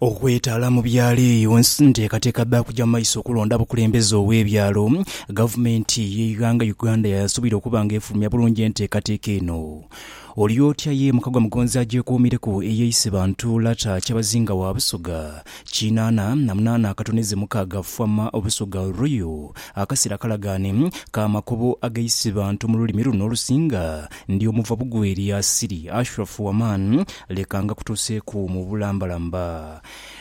Okwetaala mu byalo eyo nsi nteekateeka dha kuja mu maiso okulonda abakulembeze ow'ebyalo. Gavumenti y'eighanga Uganda yaasubira okuba nga efulumya bulungi enteekateeka eno. Oli otya ye Mukagwa Mugonzi agyekuumireku eyeise bantu Lata Kyabazinga wa Busoga kinaana na munaana akatoneze mukaaga Fwama Busoga Royal akasera kalagaane ka makubo ageise bantu mu lulimi luno olusinga Ndi omuva bugwe eri Asiri, Ashrafu Waman, leka ngakutuuseeku mu bulambalamba.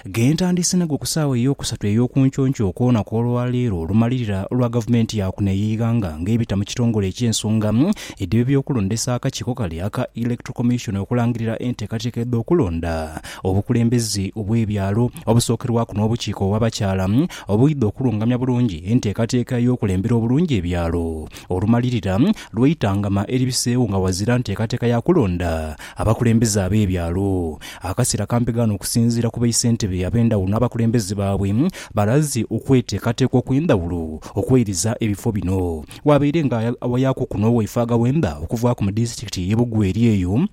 Ghe ntandiise nago ku saawa ey'okusatu ey'okunconkyo okwona kw'olwa leero olumalirira lwa gavumenti ya kuno ey'eighanga ng'ebita mu kitongole eky'ensonga edh'eby'okulondesa akakiiko kale aka Electoral Commission okulangirira enteekateeka edh'okulonda obukulembeze obw'ebyalo obusookerwaku n'obukiiko obw'abakyala obuidha okulungamya bulungi enteekateeka ey'okulembera obulungi ebyalo Olumalirira lw'eitangama eribiseewo nga wazira nteekateeka ya kulonda abakulembeze ab'ebyalo. Akasera kampegaano okusinziira ku baisentebe ab'endhawulo n'abakulembeze baabwe balaze okweteekateeka okw'endhawulo okweiriza ebifo bino. Waabaire nga awayaaku kuno waifaaga wenda okuvaaku mu disitulikiti y'e Bugweri eyo,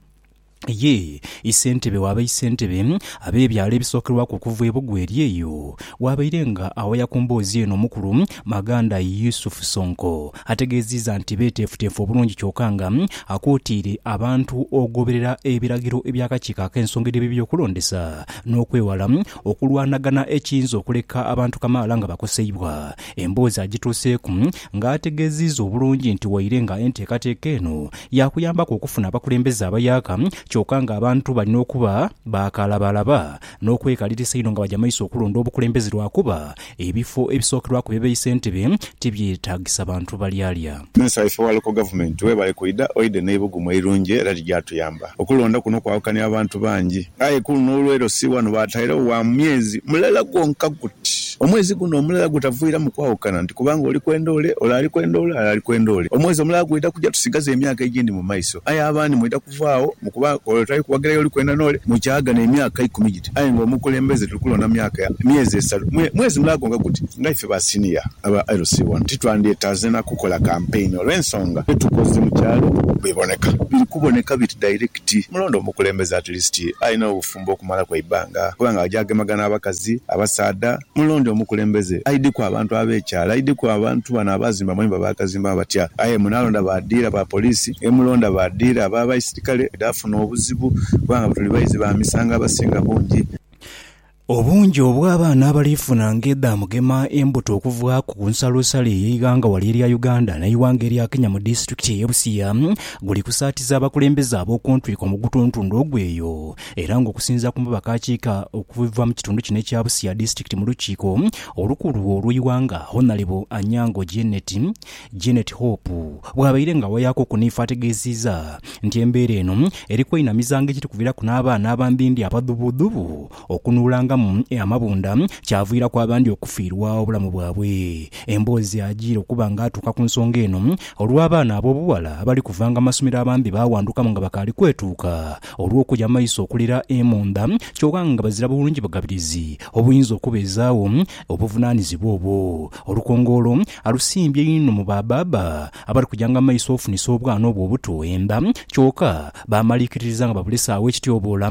Ye isentebe wa baisentebe ab'ebyalo ebisookerwaku okuva e Bugwe eri eyo. Waabaire nga awaya ku mboozi eno omukulu Maganda Yusuf Sonko. Ategeeziiza nti beeteefuteefu obulungi kyoka nga akwotaire abantu ogoberera ebiragiro eby'akakiiko ak'ensonga edh'eby'ebyokulondesa n'okwewala okulwanagana ekiyinza okuleka abantu kamaala nga bakoseibwa. Emboozi agituuseeku nga ategeziiza obulungi nti waire nga enteekateeka eno yaakuyambaku okufuna abakulembeze abayaka kyoka nga abantu balina okuba baakalabalaba n'okwekalirisa einho nga baja maiso okulonda obukulembeze lwakuba ebifo ebisookerwaku bebeyi sentebe tibyetagisa bantu balyalya. Minisita waife wa Local Government webale kwidha oidhe n'eibugumu eirungi era lijaatuyamba. Okulonda kuno kwawukania abantu bangi aye kuluno olw'eiro si wano baatairegho wa myezi mulala gwonka guti omwezi guno omulala gwetavwiramu kwawukana nti kubanga oli kwenda ole, ole ali kwenda ole, ale ali kwenda ole. Omwezi omulala gwidha kuja tusigaze emyaka egindi mu maiso aye abandi mwidha. okuva agho mu kuba ole tali kuwagira y'oli kwenda n'ole mu kyaagana emyaka ikumi giti. Aye nga omukulembeze tuli kulonda myaka ya myezi esalu. Mwe, mwezi mulala gwonka guti. Nga ife ba siniya aba LC wano, titwandyetaaze na kukola kampeyini olw'ensonga dhe tukoze mu kyalo bweboneka. Biri kuboneka biti dairekiti. Mulonde omukulembeze at least alina obufu. omukumba okumalaku eibanga, kuba nga aja agemagana abakazi, abasaadha. Mulonde omukulembeze aidhiku abantu ab'ekyalo, aidhiku abantu bano abaazimba amayumba baagazimbamu batya. Aye munaalonda ba dhiira ba poliisi, ni mulonda ba dhiira aba baisirikale, dhaafuna obuzibu, kuba nga tuli baizi ba misango abasinga bungi. Obungi obw'abaana abaliifuna ng'edhamugema embuto okuva ku nsalosalo ey'eighanga wali erya Uganda n'eighanga erya Kenya mu disitulikiti ey'e Busia, Guli kusaatiza abakulembeze ab'oku ntwiko mu gutuntundu ogwo eyo, era nga okusinzira ku mubaka akiika okuva mu kitundu kino ekya Busia Disitulikiti mu lukiiko olukulu olw'eighanga Honalebo Anyango Janet Janet Hope bwabaire nga awayaaku okuniifa ategeziiza nti embeera eno eri kweinamiza nga ekiri kuviraku n'abaana abambimbi abadhubudhubu Okunuulangamu amabunda kyaviiraku abandi okufiirwa obulamu bwabwe. Emboozi ajiire okuba nga atuuka ku nsonga eno olw'abaana ab'obughala abali kuvanga mu masomero abandi baawandukamu nga bakaali kwetuuka olw'okuja mu maiso okulira emunda kyoka nga bazira bulungi bugabirizi obuyinza okubeezaagho obuvunaanizibwa obwo. Olukongoolo alusimbye inho mu ba baaba abali kujanga mu maiso ofunisa obwana obwo obuto enda kyoka baamaliikiririza nga babulese agho ekityoboola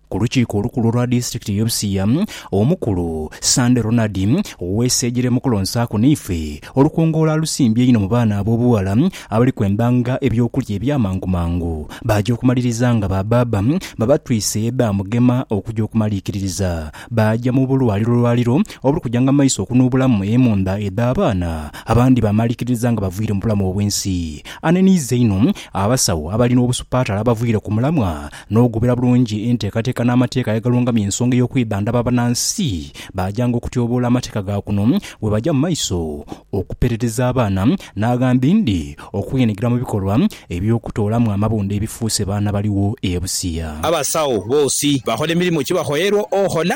Ku lukiiko olukulu olwa disitirikiti y'e Busia, omukulu, Sande Ronald Weseejere mu kulonsaaku naife, olukungoola alusimbye inho mu baana ab'obughala abali kwendanga eby'okulya eby'amangu mangu baaja okumaliriza nga ba baaba babatwise edha Mugema okuja okumaliikiririza baaja mu bulwaliro lwaliro obuli kujanga mu maiso okunuubulamu emundha edh'abaana abandi baamaliikiririza nga bavwire mu bulamu obw'ensi. Aneniiza inho abasawo abali n'obusupaatale abavwire ku mulamwa n'okugoberera bulungi enteekateeka n'amateeka agalungamya ensonga ey'okwebandaba abanansi baajanga okutyoboola amateeka ga kuno bwe baja mu maiso okupeerereza abaana n'aghambi ndi okwenhigira mu bikolwa eby'okutoolamu amabunda ebifuuse baana baligho e Busia. Abasawo boosi bakhola emirimo ki bakhoyerwa okhola.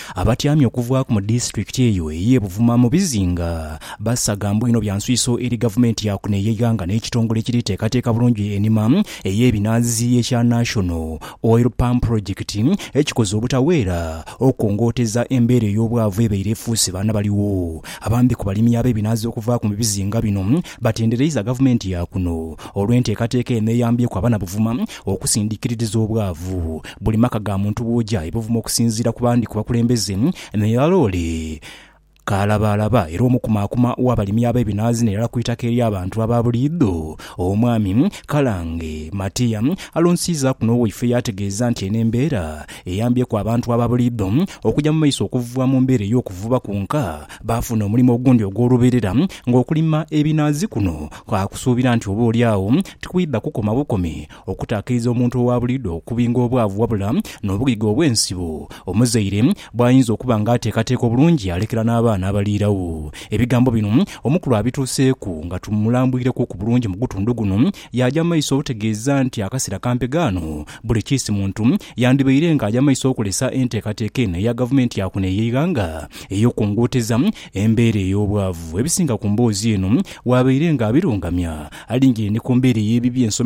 Abatyami okuvaaku mu disitulikiti eyo eye Buvuma mu bizinga basagambwa inho bya nswiso eri gavumenti ya kuno eyeighanga n'ekitongole ekiri teekateeka bulungi enima ey'ebinaazi ekya National Oil Palm Project ekikoze obutaweera okukongooteza embeera ey'obwavu ebaire efuuse baana baligho. Abandi ku balimi ab'ebinaazi okuvaaku mu bizinga bino batendereiza gavumenti ya kuno olw'enteekateeka eno eyambyeku abana Buvuma Okusindikiririza obwavu. Buli maka ga muntu bwoja ebuvuma okusinziira ku bandi ku bakulembeze me ya loole kaalabaalaba era omukumaakuma w'abalimi ab'ebinaazi n'erala ku itaka ery'abantu aba buliidho. Omwami Kalange Matia alonsiizaaku n'owaife yaategeeza nti eno embeera eyambyeku abantu aba buliidho okuja mu maiso okuvuba mu mbeera ey'okuvuba kwonka baafuna omulimo ogundi ogw'olubeerera ng'okulima ebinaazi kuno kaakusuubira nti oba oli agho tikwidha kukoma bukomi okutaakiriza omuntu owa buliidho okubinga obwavu wabula n'obugege obw'ensibo omuzaire bw'ayinza okuba nga ateekateeka obulungi yaalekera n'abaana abaliirawo. Ebigambo bino omukulu abituuseeku nga tumulambwireku ku bulungi mu gutundu guno yaaja mu maiso otegeeza nti akaseera kampe ghaano buli kiisi muntu yandibaire nga aja mu maiso okolesa enteekateeka eno eya gavumenti ya kuno ey'eighanga ey'okunguuteza Embeera ey'obwavu ebisinga ku mboozi eno waabaire nga abirungamya. Alingirire ni ku mbeera ey'ebibi ensomesa.